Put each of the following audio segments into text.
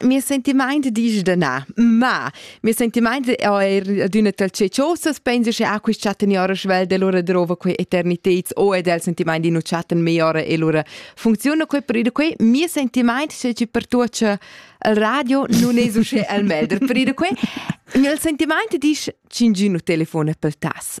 Mes sentimaint disch da na, ma mes sentimaint è eir adüna tal ceciosas, penso che a quist chattan ora schwell del ora drova quei eterniteds o e del sentimaint di nu chattan mei ora e lura funziona quei per ida quei mio sentimaint c'è ci per tuot che al radio nun es usche al melder per ida quei il sentimaint disch cingino telefone per tas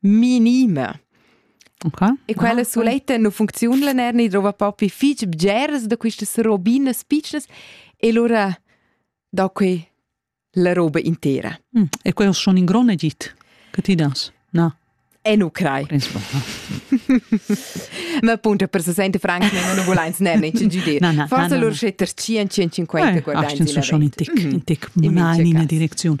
minima. Okay. E quella suletta non funziona la nerni, trova proprio fich bgeras da quistas robinas piccas e allora dà que la roba intera. Mm. E quello schon in grone git che ti das? No. E nu crai. Ma appunto per 60 francs nehmen non voleins nerni ci gide. Forse loro scetter 150 guardai. Ah, schon in tic, in tic, in tic, in direzione.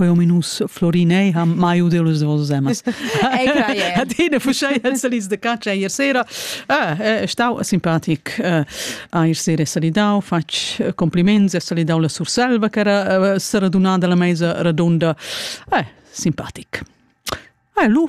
quei ominus florinei ha mai udiu les vos zemas. Ad ina fuschei el salis de cacia ier sera. Ah, eh, stau simpatic eh, a ier sera salidau, fatg eh, compliments e salidau la Surselva che era eh, seradunada la meisa radunda. Eh, simpatic. Eh, lu